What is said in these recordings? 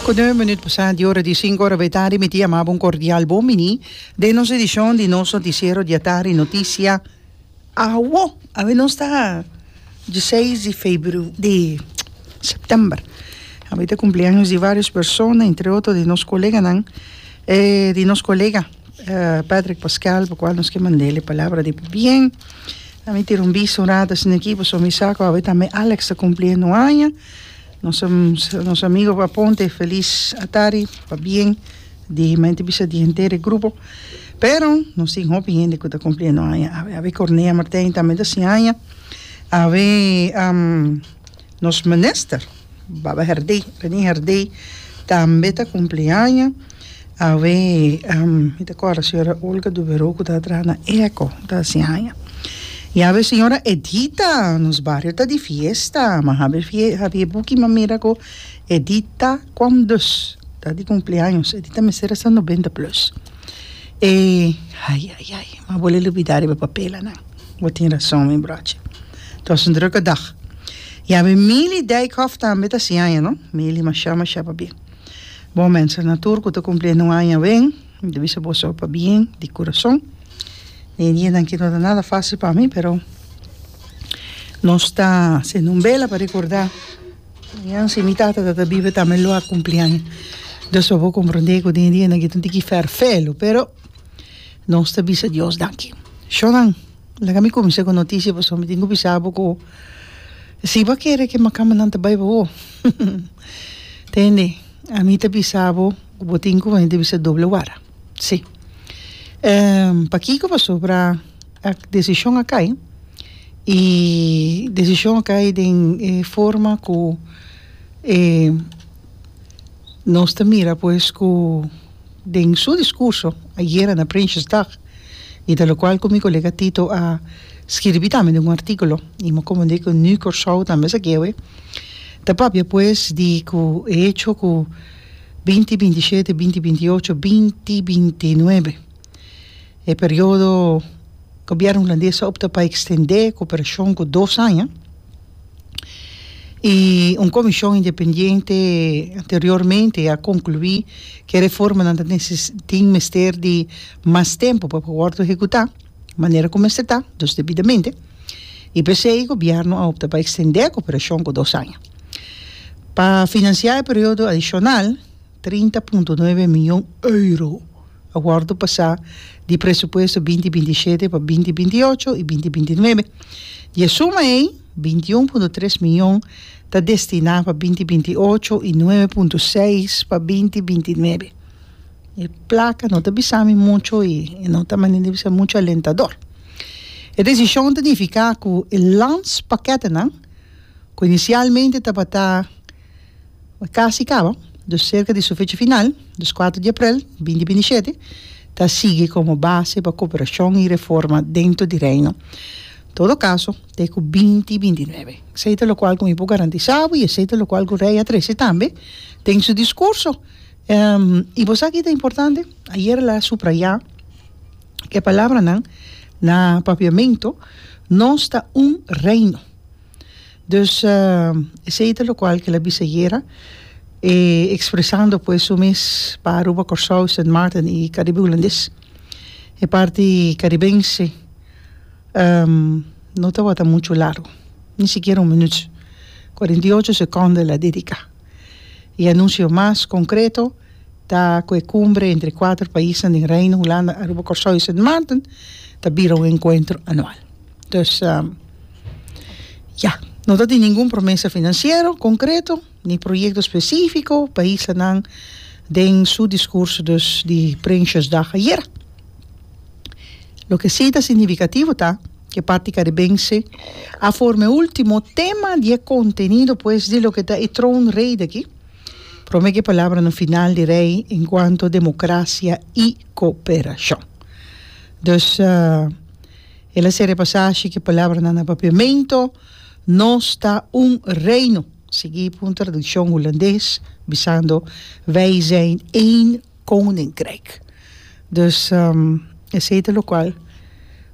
Ku nueve minüt pasá di ora di sinku ora b'e tardi mi ta yama bo un kordial bon biní den nos edishon di nos notisiero diatardi Notisia Awo! Awe nos ta di seis di febru di sèptèmber awe ta kumpleaños di vários persona entre otro di nos koleganan e di nos kolega Patrick Pascual pa kual nos ke mand'el e palabra di bien ami tira un bista un rata asina aki pasobra mi sa ku awe tambe Alex ta kumpli e nu aña. Nos amigo pa Ponte felis atari pabien di hima ente bisa di henter e grupo pero nos tin hopi hende ku ta kumpliendo aña awe Cornelia Martin tambe ta sin aña awe nos minister Baba Herdey Rene Herdey tambe ta kumpli aña. Awe mi ta kòrda señora Olga Duberoa ku ta traha na Eco ta hasi haña i awe señora Edita nos bario ta di fiesta ma habi habi e buki mi a mira ku Edita kwam dus ta di kumpleaños Edita mester a sa noventa plus e ayayay ma bo lel ubida riba papelanan bo tin rason mi brochi ta was un druke dag i awe Milly Dijkhof tambe ta hasi haña no Milly masha masha pabia. Bon mensanan tur ku ta kumpliendo un aña awen, mi ta bisa boso pa bien di kurason. Den e dianan aki no ta nada fásil pa mi, pero nos ta hasiendo un bela pa rekordá mañan si mi tata ta ta biba tambe lo a kumpli aña. Dios papá komprondé ku den e dianan aki ta un tiki fèrfè lo, pero nos ta bisa Dios daki. Shònan. Laga mi cuminsá cu e noticia pasobra mi tin cu bisa bo cu si bo a kere cu e macamannan ta bai pa bo tende ami ta bisa bo cu bo tin cu venir ta bisa doble wara si pakico pasobra decision a cay y decision a cay den e forma cu nos ta mira pues cu Den su discurso ayera na Prinsjesdag, y ta locual cu mi colega Tito a skirbi tambe den un articulo y mi a comprende cu nu Corsou tambe sa guewe, ta papia pues di cu e hecho cu binti binti shete, binti binti ocho, binti binti nuebe e periodo Gobierno Hulandes a opta pa extende e cooperacion cu dos aña, i un komishon independiente anteriormente a konkluí ku e reformanan ta tin mester di mas tempu pa por wòrdu ehekutá manera ku mester ta, dus debidamente, i p'esei gobièrnu a opta pa ekstendé e koperashon ku dos aña. Pa finansiá e periodo adishonal, Trinta punto nuebe mion euro a wòrdu pasá di presupuesto binti binti shete pa binti binti ocho i binti binti nuebe. Di e suma ei, binti i un punto tres mion ta destiná pa binti binti ocho i nuebe punto seis pa binti binti nuebe. E plaka no ta bisa mi mucho i e no ta manera di bisa mucho alentador. E desishon ta nifiká ku e landspakètnan, ku inisialmente tabata, Mi casi caba, dus cerca di su fecha final, dos cuatro di aprel binti binti shete, ta sigui como base pa cooperacion y reforma dentro di Reino. Todo caso, t'e cu binti binti nuebe. Esey ta locual cu mi por garantisa bo y esey ta locual cu Rey a trece tambe den su discurso. Y bo sa kico ta importante? Ayer el a subraya cu e palabranan na Papiamento, Nos ta un Reino. Dus esei ta lokual ke el a bisa ayera ekspresando pues su mes pa Aruba, Kòrsou, Sint Maarten i Karibe Hulandes. E parti karibense no tabata muchu largu, ni sikiera un minüt, kuarenta i ocho sekònda el a dediká. E anunsio mas konkreto ta ku e kumbre entre kuater paisnan den Reino Hulanda, Aruba, Kòrsou i Sint Maarten ta bira un enkuentro anual. Dus ya, no ta tin ningun promesa finansiero konkreto ni proyekto spesifiko pa islanan den su diskurso dus di Prinsjesdag ayera. Loke si ta signifikativo ta ku e parti karibense a forma e ultimo tema di e kontenido pues di loke ta e troonrede aki, prome ku e palabranan final di rei enkuanto demokrasia i kooperashon. Dus. El a ser repasá ashi ku e palabranan na papia, Mento nos ta un reino, sigui pa un tradukshon hulandes bisando, Wij zijn één koninkrijk. Dus, esei ta lokual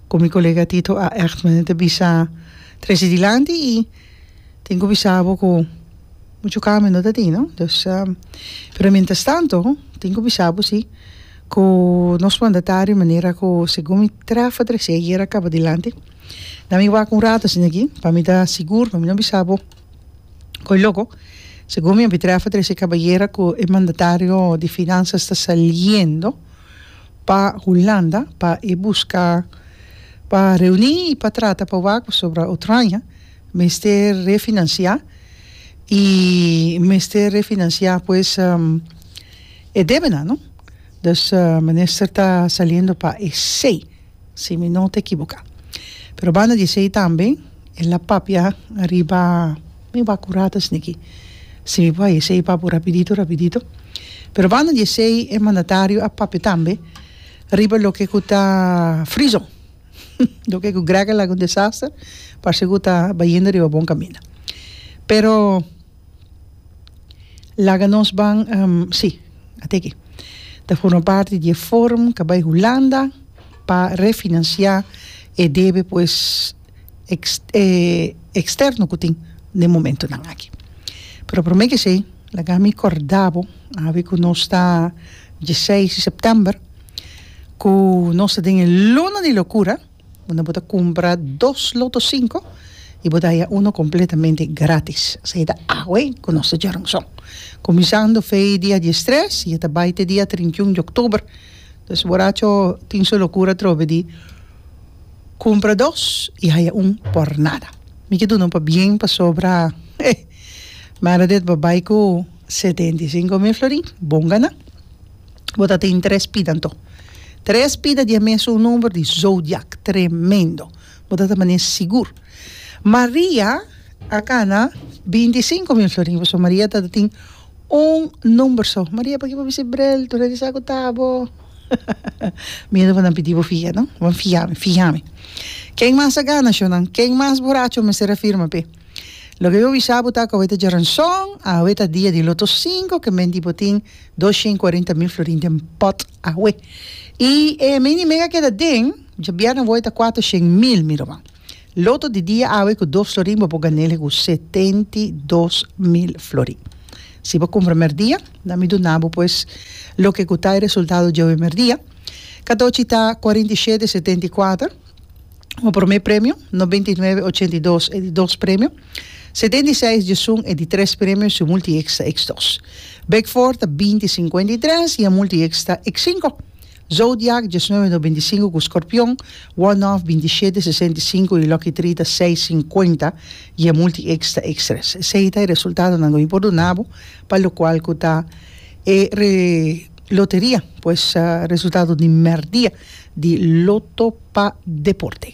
ku mi kolega Tito A. Echtman ta bisa trese dilanti i tin ku bisa bo ku muchu kambio no ta tin, no. Pero mientrastanto tin ku bisa bo si. Ku nos mandatario manera ku segun mi trafa trese ayer a kaba dilanti na mi wak un rato asina aki pa mi ta sigur pa mi no bisa bo koe loko segun mi a bin trafa trese kaba ayer ku e mandatario di finansas ta saliendo pa Hulanda pa e buska pa reuni i pa trata pa wak pasobra Utranja mester refinansia i mester refinansia pues. E debe nan no. Dus minister ta saliendo pa esey si mi no ta ekiboka. Pero banda di esey tambe el a papia ariba mi bakuratas niki si mi por ha'i esey papu rapidito rapidito. Pero banda di esey e mandatario a papia tambe riba loke ku ta frizo loke ku grega laga un desaster parse ku ta bayendo riba bon kaminda. Pero Laga nos ban si a teki ta forma parti di e forum ka bai Hulanda pa refinancia e debe pues externo ku tin den momentunan aki pero prome kesei laga mi korda bo awe ku nos ta diesiseis di september ku nos ta den e luna di lokura. Unda bo ta cumpra dos Lotto Cinco y bo ta haya uno completamente gratis. Esey ta awe cu nos ta djora un son. Cuminsando fey dia diestres y e ta bay te dia trintiun di octuber. Dus boracho tin su locura atrobe di cumpra dos y haya un por nada. Mi ke duna un pabien pasobra eh Meredith bo bay cu setenta y cinco mil florin. Bon gana. Bo ta tin tres pida anto. Tres pida di e mes un number di zodiak. Tremendo. Bo ta ta mane sigur. Maria a cana bintisinco mil florin. Pasobra Maria ta tin un number so. Maria pakiba bo bisti brel? Tur a di sa cu ta bo. Miedo bo nan pidi bo fia, no? Bo nan fia mi, fia mi. Ken mas a gana show nan? Ken mas boracho mester a firma pe? Loke bo bisa bo ta cu awe ta djaranzon, awe ta dia di loto cinco, ke mente bo tin Dos shen cuarenta mil florin den pot awe. Y e mini mega keda den, djabièrnè wòy ta cuater shen mil, mi ruman. Loto di dia awe cu dos florin bo por ganel he cu setenta y dos mil florin. Si bo cumpra merdia, na mi duna bo pues loke cu ta e resultado djobe merdia. Cadochi ta cuarenta y shete setenta y cuater, bo prome premio, noventa y nueve ochenta y dos e di dos premio. Se den di seis djesun e di tres premios su multihits ta eks dos. Big Four ta binti sinkuenta i tres i e multihits ta eks sinku. Zodiak, diesnuebe nobenta i sinku ku Skorpion, One Off, binti shete sesenta i sinku i Lucky Three ta seis sinkuenta i e multihits ta eks tres. Esei ta e resultadonan ku mi por duna bo pa lokual ku ta e re loteria pues resultado di mèrdia di Loto pa Deporte.